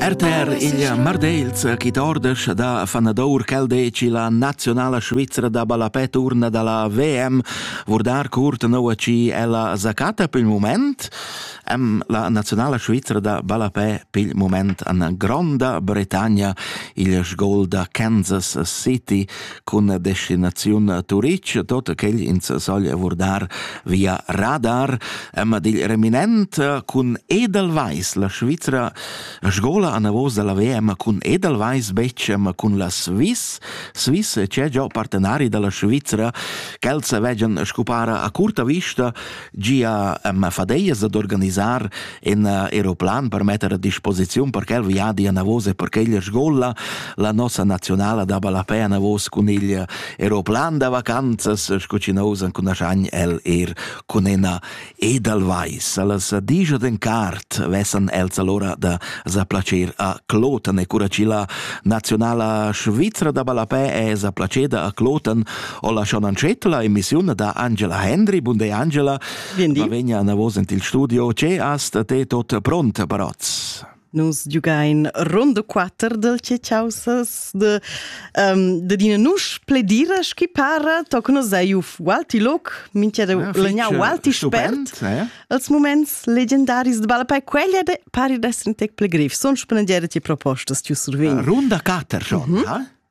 RTR il Mardels chi dordesch da fanadour quel deci la nazionala Svizzera da ballapè turna da la VM vurdar curt noua ci ella zacata pel moment am la nazionala Svizzera da ballapè pel moment an Gronda Bretagna il gol da Kansas City cun la destinaziun a Turitg, tot quel ins soglia vurdar via radar, amma digl reminent cun Edelweiss, la Svizra sgola an avos dalla VM cun Edelweiss betg, ma cun la Swiss. Swiss c'è già partenari dalla Svizra, quels vegian scupara a curta vista Gia eh, ma fadeias ad organisar in aeroplan per metter a disposiziun per quel viadi a Navos e per quella scola la nossa nazionala da ballapè a Navos cun il aeroplan da vacanzas sco ci nousan cun asagn el er cun ena Edelweiss. Allas digia den cart vessan els allora da za placer a Kloten e cura ci la nazionala svizra da ballapè è za placeda a Kloten ho lasciò Ancetta la emissiun da Angela Hendry. Bun day Angela. Va vegna a vos in il studio. Ce hast te tot pront brazz? Nus giugain Ronde 4 del Cecausas de, um, de dina nus pledira schi para, toc nos ei uf Walti Loc, minchia de ja, legna Walti Spert, eh? als moments legendaris de Balla Pai quella de pari d'esser in tec ple grif. Son spendere ti propostas tiu survegn. Runda 4 schon, mm -hmm. ha?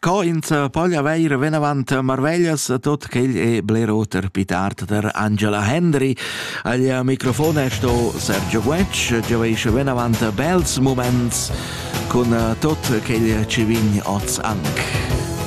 Co ins poglia veir vinavant marveglias tot quel è bler oter pitart der Angela Hendry. Al microfon è sto Sergio Guetsch, gioveish vinavant bels moments cun tot quel ci vin oz anche.